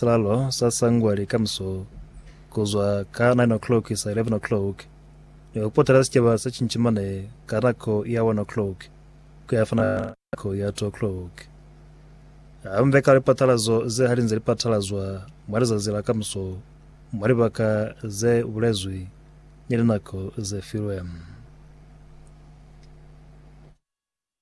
Silalo sa sangwa likamuso kuzwa ka 9 o'clock isa 11 o'clock ni kupotela sicaba sa cincimane ka nako ya 1 o'clock kuya fana ka nako ya 2 o'clock. Hambe ka lipatalazo ze halinze lipatalazwa mwa lizazi la kamuso mwa libaka ze bulezwi ni linako ze filwe.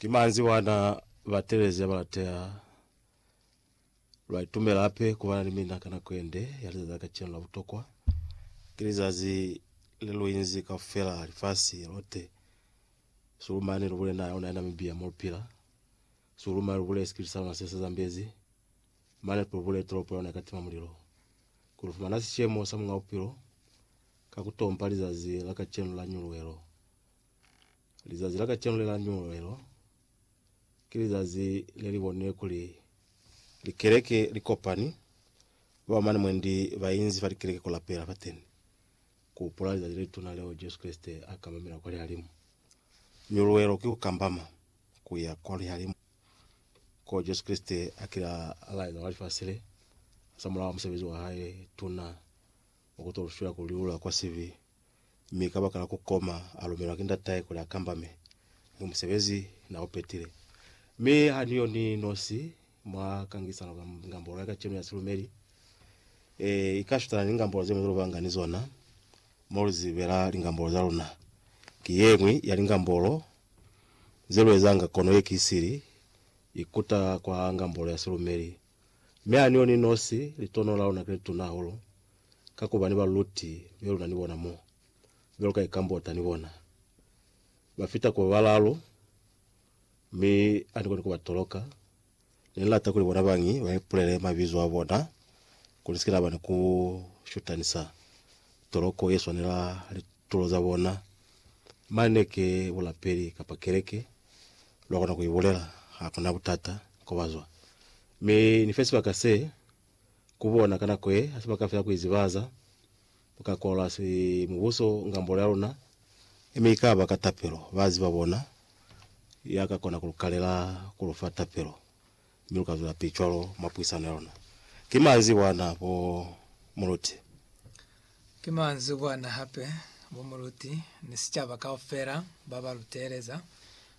Ki manzwi wana batelezi ya balateha lwa itumela hape kubana ni mina ka nako yende ya lizazi la kacenu la butokwa. Ki lizazi le lu inzi kaufela lifasi lote, sihulu mane lu bule naha ya luna ya Namibia mo lu pila, sihulu mane lu bule sikipiti sa luna se sa zambezi, mane hape lu bule tolopo ya luna ye ka tima mulilo. Ki lu fumana sishemo sa Muñ'a Bupilo ka ku tompa lizazi la kacenu la nyuluhelo. Lizazi la kacenu le la Nyululelo ki lizazi le li bonile kuli likeleke li kopani, ba ba mane mwendi ba inzi fa likeleke ku lapela fateni, ku hupula lizazi le lituna leo Jesu Kreste a kambamela kwa lihalimu. Nyululelo ki ku kambama ku ya kwa lihalimu, ko Jesu Kreste a kile a laeza kwa lifasi le, hasamulaho wa musebezi wa hae tuna wa ku to lu fila ku liula kwa sibi. mi kabakala kukoma alumelwa ki ndatahe kuli akambame ni musebezi na upetile. Mi haniyo ni nosi mwa kangisano ka ngambolo ya kacenu ya silumeli, e ikashutana ni ngambolo zeñwi zelubanga ni zona mo luzibela lingambolo za luna. Ki yeñwi ya lingambolo zeluezanga kono ye ki sili, ikuta kwa ngambolo ya silumeli Mi ha ni yo ni nosi, litono la luna ki le tuna hahulu, ka ku ba ni baluluti be luna ni bona mo, be lu ka ikambota ni bona. Ba fita ku ba balaalu, mi ha ni koni ku ba toloka. Ne ni lata kuli bona bañi ba ipulele mabizo a bona, kuli ni si ke na ba ni ku shutanisa toloko ye swanela litulo za bona, mane ke bulapeli kapa keleke. lwa kona ku i bulela. Ha ku na butata ko ba zwa. Mi Ni fe sibaka se ku bona ka nako ye, ha sibaka fela ku izibahaza mi ka kwalola si Mubuso ngambolo ya luna. Mi i ka ba ka tapelo, ba ziba bona ya ka kona ku lu kalela ku lu fa tapelo. Mi lu ka zwela pili cwalo mwa puisano ya luna. Ki manzi bwana, bo muluti. Ki manzi bwana hape, bo muluti, ni sicaba kaufela ba ba lu teeleza,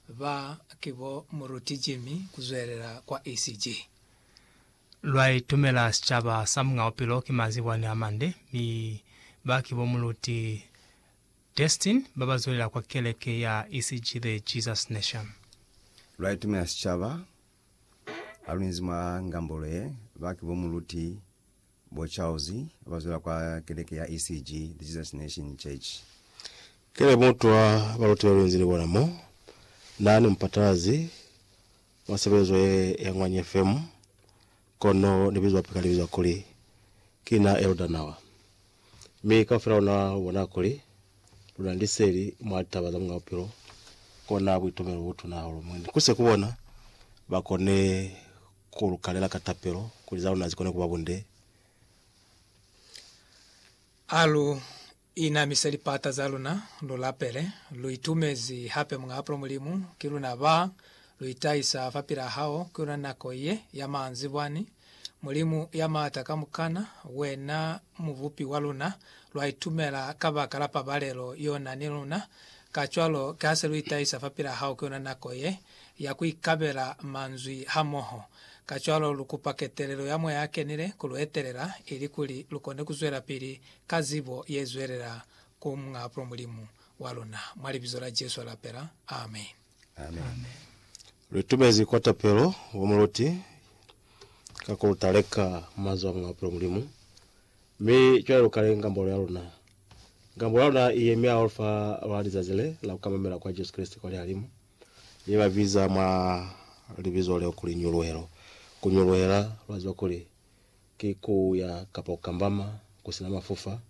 ba ki bo muluti Jimmy ku zwelela kwa ECG. Lwa itumela sicaba sa Muñ'a Bupilo ki manzi bwani a mande, mi ba ki bo muluti Destin ba ba zwelela kwa keleke ya ECG The Jesus Nation. Lwa itumela sicaba Ha lu inzi mwa ngambolo ye, ba ki bo Muluti, bo Charles, ba ba zwela kwa keleke ya ECG, The Jesus Nation Church. Ki le mutwa baluti ba lu inzi ni bona mo. Na ni mupatalazi mwa sebelezo ye ya Ngwanye FM. Kono libizo hape ka libiza kuli, Ki na Elder Nawa. Mi kaufela luna lu bona kuli, luna ni liseli mwa litaba za Muñ'a Bupilo, kona buitumelo bo butuna hahulu. Mi ni kuse ku bona ba kone ku lu kalela ka tapelo, kuli za luna zi kone kuba bunde. A lu Inamise lipata za luna, lu lapele, lu itumezi hape Muñ'a Apula Mulimu, ki luna ba lu itahisa fa pila hao, ki yona nako ye ya manzibwani. Mulimu ya Maata Kamukana, wena Mubupi wa luna, lwa itumela kabakala pabalelo y'o na ni luna. Kacwalo, ki ha se lu itahisa fa pila hao, ki yona nako ye ya ku ikabela manzwi hamoho. Kacwalo lu kupa ketelelo ya Moya a Kenile ku lu etelela, ilikuli lu kone ku zwelapili Ka zibo ye zwelela ku Muñ'a Pulo Mulimu wa luna, mwa Libizo la Jesu a lapela. Amen. Amen. Lu itumezi kwa tapelo wa muloti ka ku lu taleka manzwi a Muñ'a Pulo Mulimu. Mi cwale lu kale ngambolo ya luna. Ngambolo ya luna i yemi hahulu fa lwa lizazi le la ku kamamela kwa Jesu Kreste kwa lihalimu. Mi ba biza mwa Libizo leo kuli nyuluhelo. Ku nyuluhela, lwa ziba kuli, Ki ku ya kapa ku kambama ku si na mafufa,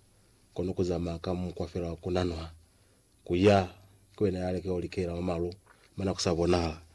kono ku zamaya ka mukwa fela wa ku nanwa. Ku ya, ki wena ya lekela ku likela mwa malu mana ku sa bonahala.